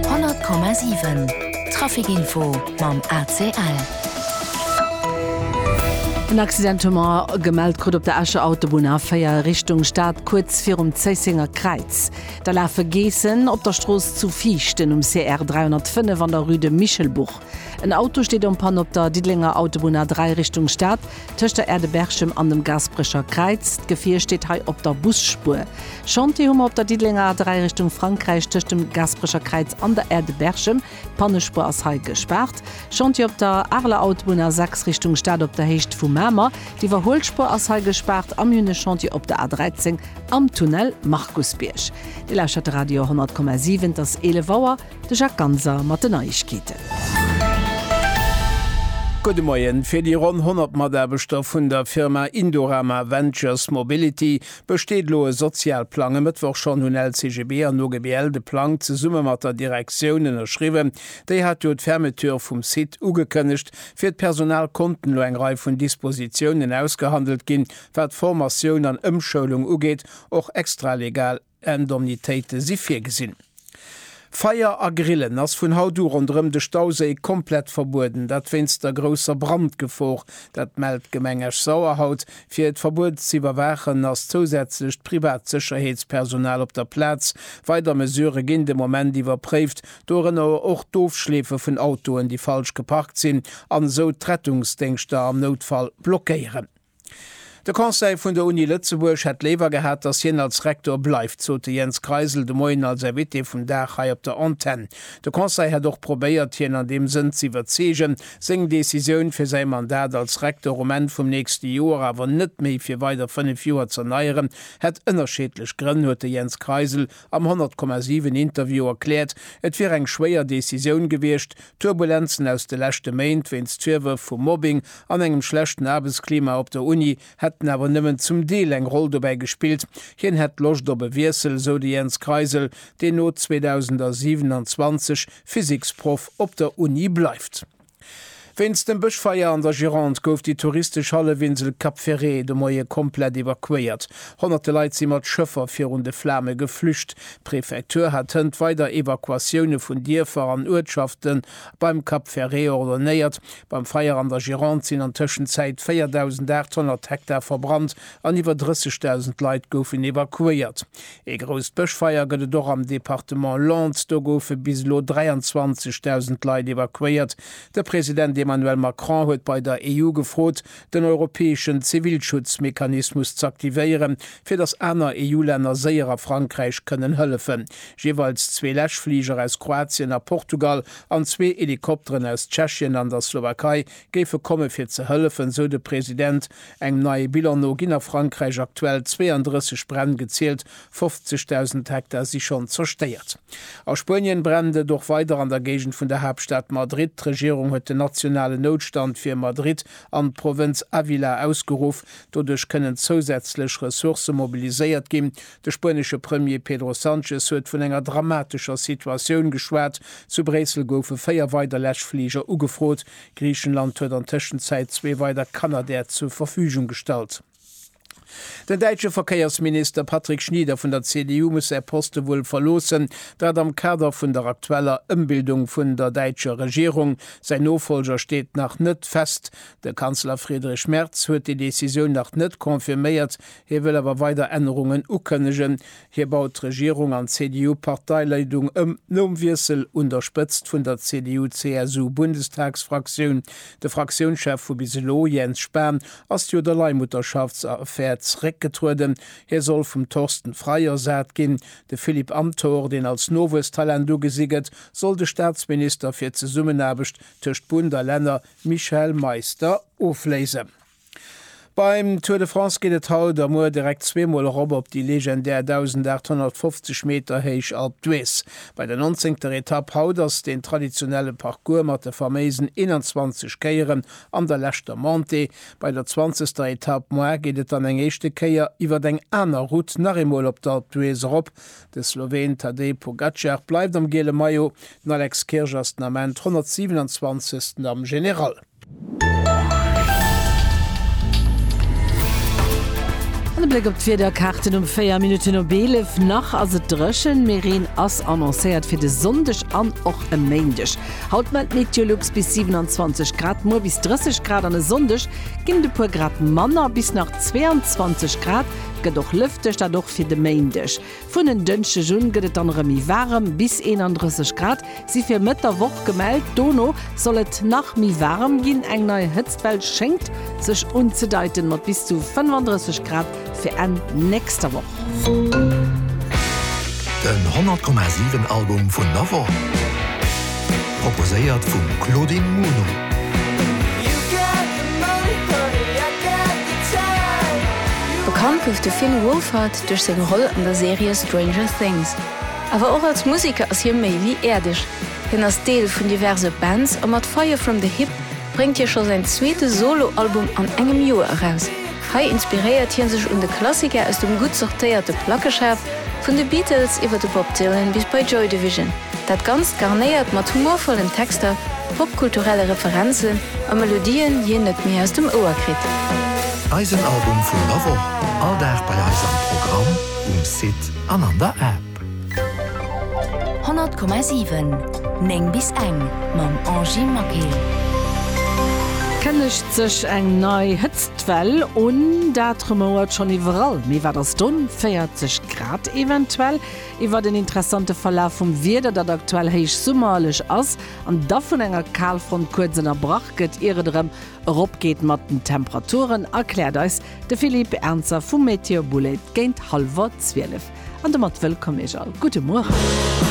100,7 Trafic-Info mam ACL. En Accident hu mer gemellt krut op der Escher Autobunn A4 Richtung Stad, kuerz virum Zéissenger Kräiz. Da lafe Geessen op der Strooss zu Viichten um CR 305 an der Rue de Michelbourg. En Auto steet en Panne op der Diddelenger Autobunn A3 Richtung Stad. Tëscht der Aire de Berchem an dem Gasperecher Kräiz. D'Gefier steet hei op der Busspuer. Chantier hu mer op der Diddelenger A3 Richtung Frankräich tëscht dem Gasperecher Kräiz an der Aire de Berchem. D'Pannespuer ass hei gespaart. Chantier op der Areler Autobunn A6 Richtung Stad op der Héicht vu Mamer. D'Iwwerhuelspuer ass hei gespaart a mir hunn e Chantier op der A13 am Tunnel Markusbierg. Dir lauschtert de Radio 100,7. Et ass 11 Auer. De Jacques Ganser mat den Neiegkeeten. Gudde Moien. Fir déi ronn 100 Mataarbechter vun der Firma Indorama Ventures Mobility besteet elo e Sozialplang. E Mëttwoch schonn hunn LCGB an OGBL de Plang zesumme mat der Direktioun ënnerschriwwen. Déi hat jo d'Fermeture vum Site ugekënnegt. Fir d'Personal konnten elo eng Rei vun Dispositiounen ausgehandelt ginn, wat Formatioun an Ëmschoulung ugeet, och extralegal. Indemnitéite si virgesinn. Feier a Grillen ass vun haut u ronderëm de Stauséi komplett verbueden, dat wéinst der grousser Brandgefor. Dat mellt d'Gemeng Esch-Sauer haut. Fir et Verbuet ze iwwerwaachen, ass zousätzlecht privat Sécherheetspersonal op der Plaz. Weider Mesurë ginn de Moment iwwerpréift, dorënner och d'Ofschleefe vun Autoen, déi falsch geparkt sinn, an esou d'Rettungsdéngschter am Noutfall blockéieren. De Conseil vun der Uni Lëtzebuerg hätt léiwer gehat, datt hien als Rektor bleift, sot de Jens Kreisel de Moien als Invité vum Dag hei op der Antenn. De Conseil hätt och probéiert, hien an deem Sënn ze iwwerzeegen, seng Decisioun, fir säi Mandat als Rektor um Enn vum nächste Joer awer net méi fir weider fënnef Joer z'erneieren, hätt ënnerscheedlech Grënn, huet de Jens Kreisel am 100,7 Interview erkläert. Et wier eng schwéier Decisioun gewiescht, D'Turbulenzen aus de leschte Méint wéinst Virwërf vu Mobbing an engem schlechten Aarbechtsklima op der Uni hätten awer nëmmen zum Deel eng Roll dobäi gespillt. Hien hätt Loscht op e Wiessel, esou de Jens Kreisel, deen no 2027 Physiksproff op der Uni bleift. Wéinst dem Bëschfeier an der Gironde gouf déi touristesch Hallefinsel Cap Ferret de Moie komplett evakuéiert. Honnerte Leit si mat Schëffer virun de Flame geflücht. D'Prefektur hat hënt weider Evakuatioune vun Dierfer an Uertschafte beim Cap Ferret ordonéiert. Beim Feier an der Gironde sinn an Tëschenzäit 4.800 Hektar verbrannt an iwwer 30.000 Leit goufen evakuéiert. Ee grousst Bëschfeier gëtt et och am Departement Landes. Do goufe bis elo 23.000 Leit evakuéiert. De President Emmanuel Macron huet bei der EU gefrot, den europäeschen Zivilschutzmechanismus z'aktivéieren, fir datt aner EU-Länner séierer Frankräich kënnen hëllefen. Jeeweils zwee Läschfliger aus Kroatien a Portugal an zwee Helikopteren aus Tschechien an der Slowakei géife komme fir ze hëllefen, esou de President. Engem neie Bilan no ginn a Frankräich aktuell 32 Bränn gezielt, 50.000 Hektar si schonn zerstéiert. A Spuenien brennt et och weider an der Géigend vun der Haaptstad Madrid. D'Regierung huet den nationalen Noutstand fir Madrid an d'Provënz Avila ausgeruff. Doduerch kënnen zousätzlech Ressourcë mobiliséiert ginn. De spuenesche Premier Pedro Sanchez huet vun enger dramatescher Situatioun geschwat. Zu Bréissel goufe véier weider Läschfliger ugefrot. Griichenland huet an Tëschenzäit zwee weider Canadair zur Verfügung gestallt. Den däitsche Verkéiersminister Patrick Schnieder vun der CDU muss säi Poste wuel verloossen, dat am Kader vun der aktueller Ëmbildung vun der däitscher Regierung. Säin Nofollger steet nach net fest. De Kanzler Friedrich Merz huet déi Decisioun nach net confirméiert, hie wëll awer weider Ännerungen ukënnegen. Hie baut d'Regierung an d'CDU-Parteileidung ëm, nom Wiessel un der Spëtzt vun der CDU-CSU-Bundestagsfraktioun. De Fraktiounschef vu bis elo, Jens Spahn, ass jo der Leihmutterschaftsaffär zeréckgetrueden. Hie soll vum Thorsten Frei ersat ginn. De Philippe Amthor, deen als Nowuesstalent ugesi gëtt, soll de Staatsminister fir d'Zesummenaarbecht tëscht Bund a Länner Michael Meister ofléisen. Beim Tour de France geet et haut a muer direkt zweemol erop op déi legendär 1.850 Meter héich Alpe d'Huez. Bei der nonzéngter Etapp haut ass den traditionelle Parcours mat de faméisen 21 Kéieren an der leschter Montée. Bei der zwanzegster Etapp moi geet et dann eng éischte Kéier iwwert eng aner Route nach eemol op d'Alpe d'Huez erop. De Sloween Tadej Pogacar bleift am giele Maillot, den Alex Kirch ass den Ament 127. am General. An e Bléck op d'Wiederkaarten um 4 Minutten op 11. Nach ass et dréchen, mee Reen ass annoncéiert fir de Sonndeg an och e Méindeg. Haut mellt Meteolux bis 27 Grad, muer bis 30 Grad an e Sonndeg ginn et e puer Grad manner, bis nach 22 Grad. Et gëtt och lëfteg, dat och fir de Méindeg. Vun en Dënschdeg un gëtt et dann erëm méi waarem, bis 31 Grad si fir Mëtt der Woch gemellt. Dono soll et nach méi waarem ginn, eng nei Hëtztwell schéngt sech unzedeiten, mat bis zu 35 Grad fir Enn nächster Woch. Den 100,7 Album vun der Woch, proposéiert vum Claudine Muno. Bekannt gouf de Finn Wolfhard Duerch seng Roll an der Serie Stranger Things, awer och als Museker ass hie méi wéi äerdeg. Hien ass Deel vun diverse Bands a mat Fire From The Hip bréngt hie scho säin zweete Solo-Album an engem Joer eraus. Hei inspiréiert hie sech un de Klassiker aus dem gutt sortéierte Plackeschaf, vun de Beatles iwwer de Bob Dylan bis bei Joy Division. Dat Ganzt garnéiert mat humorvollen Texter. Popkulturelle Referenzen a Melodien hien net méi aus dem Ouer kritt. Eisen Album vun der Woch, all Dag bei eis am Programm, um Site an an der App. 100,7 9 bis eng mam Angie Maquet. Kënnegt sech eng nei Hëtztwell un? Dat rumouert schonn iwwerall. Mee wat ass dunn? 40 Grad eventuell? iwwert en interessante Verlaf vum Wieder, dat aktuell héich summerlech ass an da vun enger Kalfront kuerz ënnerbrach gëtt, ier et erëm eropgeet mat den Temperaturen, erkläert eis de Philippe Ernzer vu Météo Boulaide géint hallwer zwielef. An domat wëllkomm Iech all. Gudde Mueren.